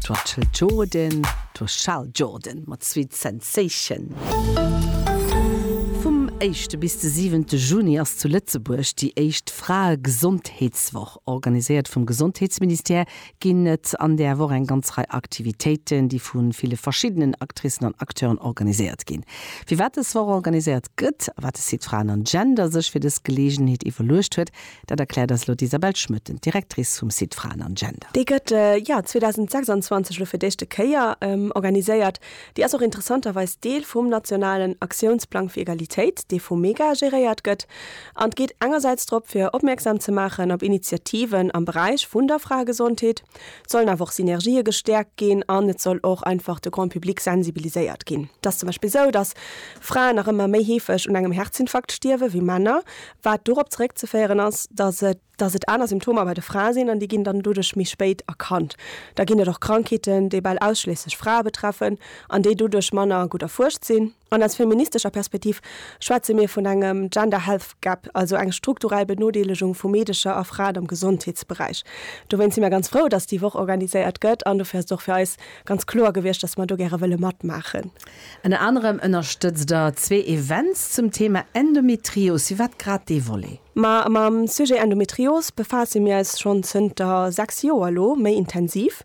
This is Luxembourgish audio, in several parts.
'T war Chill Jordan, 't was Chal Jordan mat Sweet Sensation. Vum éischte bis de siwente Juni ass zu Lëtzebuerg déi éischt Fraegesondheetswoch. Organiséiert vum Gesondheetsministère ginn et an där Woch eng ganz Rei Aktivitéiten, déi vu ville verschiddenen Actricen an Acteuren organiséiert ginn. Firwat dës Woch organiséiert gëtt a wat de Site Fraen an Gender sech fir dës Geleegenheet iwwerluecht huet, Dat erkläert eis elo d'Isabelle Schmoetten, d'Directrice vum Site Fraen an Gender. Dee gëtt, jo, 2026 elo fir d'éischte Kéier organiséiert. Dee ass och interessanterweis Deel vum nationalen Aktiounsplang fir Egalitéit, dee vum MEGA geréiert gëtt. An et geet engersäits drop, fir opmierksam ze maachen op Initiativen am Beräich vun der Fraegesondheet. Et sollen awer och Synergië gestäerkt ginn an et soll och einfach de Grand public sensibiliséiert ginn. Et ass zum Beispill esou, dass Fraen nach ëmmer méi heefeg un engem Herzinfarkt stierwen, wéi Männer. wat dorop zeréckzeféieren ass, datt et datt et aner Symptomer bei de Frae sinn an déi ginn dann doduerch méi spéit erkannt. Da ginn et och Krankheeten, déi bal ausschliesslech Frae betreffen an déi doduerch manner gutt erfuerscht sinn. An aus feministescher Perspektiv schwätze mir vun engem Gender Health Gap, also eng strukturell Benodeelegung vu Meedecher a Fraen am Gesondheetsberäich. Dowéint si mir ganz frou, datt déi Woch organiséiert gëtt an dofir ass et och fir eis ganz kloer gewiescht, datt mer do gäre wëlle matmaachen. Ënner anerem ënnerstëtzt der zwee Events zum Thema Endometrios. Firwat grad dee Volet? Ma mam Sujet Endometrios befaasse mir eis schonn zënter 6 Joer elo méi intensiv.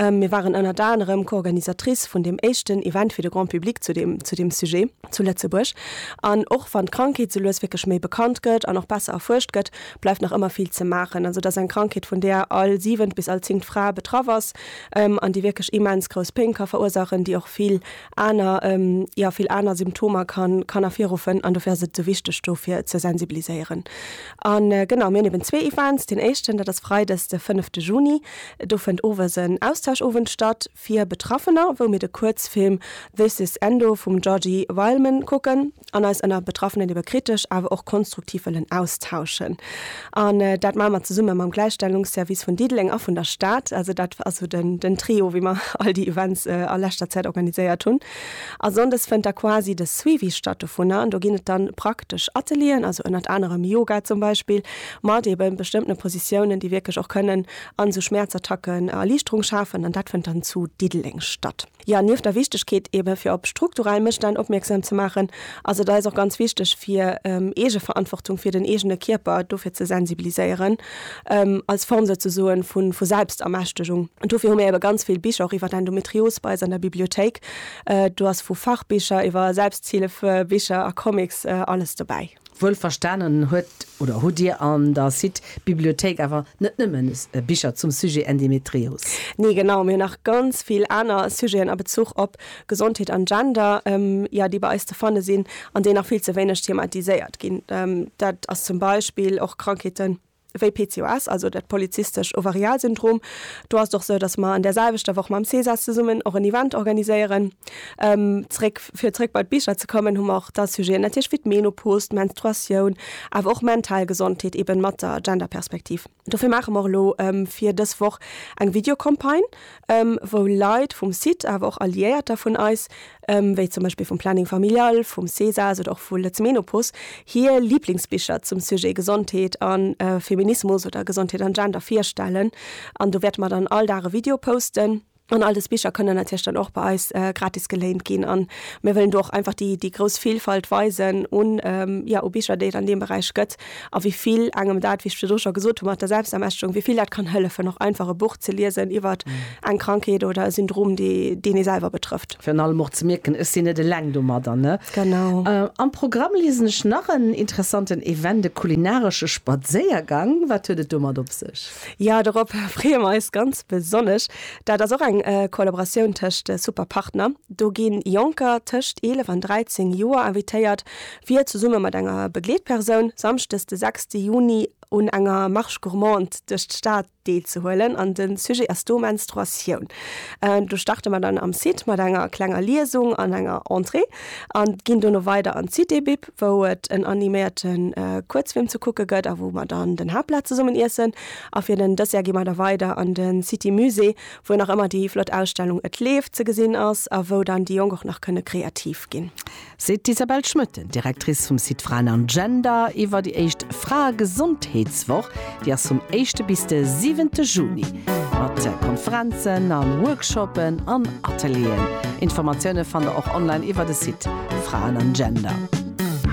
Mir waren ënnert anerem Co-Organisatrice vun deem éischten Event fir de Grand Public zu deem zu deem Sujet zu Lëtzebuerg. An och wann d'Krankheet sou lues wierklech méi bekannt gëtt an och besser erfuerscht gëtt, bleift nach ëmmer vill ze maachen. Also et ass eng Krankheet vun där all siwent bis all zéngt Fra betraff ass. an déi wierklech immens grouss Péng ka verursaachen, déi och vill aner, jo, vill aner Symptomer kann, kann ervirruffen an dofir ass et esou wichteg dofir ze sensibiliséieren. A genau, mir hunn eben zwee Events, deen éischten, dat ass Freides de fënnefte Juni, do fënnt owes en Austauschowend statt fir Betraffener, wou mir de Kuerzfilm This is Endo vum Georgi Wildman kucken. an eis ënner Betraffenen iwwer kritesch awer och konstruktiv wëllen austauschen. An dat maache mer zesumme mam Gläichstellungsservice vun Diddeleng a vun der Stad. Also dat ass esou den Trio, wéi mer all déi Events a leschter Zäit organiséiert hunn. A sonndes fënnt da quasi de Suivi statt dovunner an do ginn et dann praktesch Atelieren, also ënnert anerem Yoga zum Beispill, mat eebe bestëmmtene Positiounen, déi wierklech och kënnen an esou Schmäerzattacken Erliichterung schafen. An dat fënnt dann zu Diddeleng statt. Jo, nieft der Wichtegkeet eebe fir op strukturell Mësstänn opmierksam ze maachen, ass et eis och ganz wichteg fir Eegeverantwortung fir den eegene Kierper dofir ze sensibiliséieren, als Form souzesoen vu Selbstermächtegung. Dofir hu mir eebe ganz vill Bicher och iwwer Endometrios bei eis an der Bibliothéik. Do ass vu Fachbicher iwwer Selbsthilfebicher a Comics alles dobäi. Wuel verstanen huet oder hutt Dir an der Cite Bibliothéik awer net nëmmen Bicher zum Sujet Endemetrios? Nee, genau, mir hunn nach ganz vill aner Sujeten a Bezuch op Gesondheet an Gender, jo, déi bei eis ze fanne sinn an déi nach vill ze wéineg thematiséiert ginn. Dat ass zum Beispill och Krankheeten, wéi PCOS, also dat polyzystescht Ovarialsyndrom. Do ass et och esou, datt mer an där selwechter Woch mam Cesas zesummen och en Event organiséieren. Zréck, fir zréck bei d'Bicher ze kommen, hu mer och da Sujeten natierlech wéi d'Menopause, d'Menstruatioun, awer och mental Gesondheet, eeben mat der Genderperspektiv. Dofir maache mer och elo fir dës Woch eng Videocampagne, wou Leit vum site, awer och Alliéierter vun eis, wéi zum Beispill vum Planning Familial, vum Cesas oder och vu Lëtzmenopos, hir Liblingsbicher zum Sujet Gesondheet a Feminismus oder Gesondheet an Gender virstellen. An do wäerte mer dann all Dag e Video posten. An all dës Bicher kënnen natierlech dann och bei eis gratis geléint ginn. An mir wëllen do och einfach déi, déi grouss Vilfalt weisen un, jo, u Bicher, déi et an deem Beräich gëtt. a wéi vill engem dat, wéi ech virdu scho gesot hu mat der Selbstermächtigung, wéi vill dat kann hëllefen, och einfach e Buch ze liesen iwwert eng Krankheet oder e Syndrom, dee, deen ee selwer betrëfft. Virun allem och ze mierken, ech sinn net eleng domadder, ne? Genau. Am Programm liesen ech nach en interessanten Event, e kulinaresche Spadséiergang. Wat huet et domat op sech? Jo, dorop freeë mer eis ganz besonnesch. Dat ass och eng Kollaboratioun tëscht Super Partner. Do gi Jonker tëscht 11 an 13 Joer invitéiert, wier zesumme mat enger Begleetpersoun samschdes de 6 Juni un enger Marche gourmande duerch d'Stad deelzehuelen an de Sujet ass do Menstruatioun. Do starte mer dann am Site mat enger klenger Liesung an enger Entrée an ginn dono weider an d'Citébib, wou et en animéierte Kuerzfilm ze kucke gëtt a wou mer dann den Haaptplat zesummen iessen. A fir den Dessert gi mer da weider an de Citymusée, wou nach ëmmer déi flott Ausstellung Et leeft ze gesinn ass a wou dann déi Jonk och nach kënne kreativ ginn. seet d'Isabelle Schmoetten, Directrice vum Site Fraen an Gender, iwwer déi éischt Fraegesondheetswoch, déi ass vum éischte bis de siwente Juni, mat Konferenzen a Workshoppen an Atelieren. Informatioune fannt der och online iwwer de Site Fraen an Gender.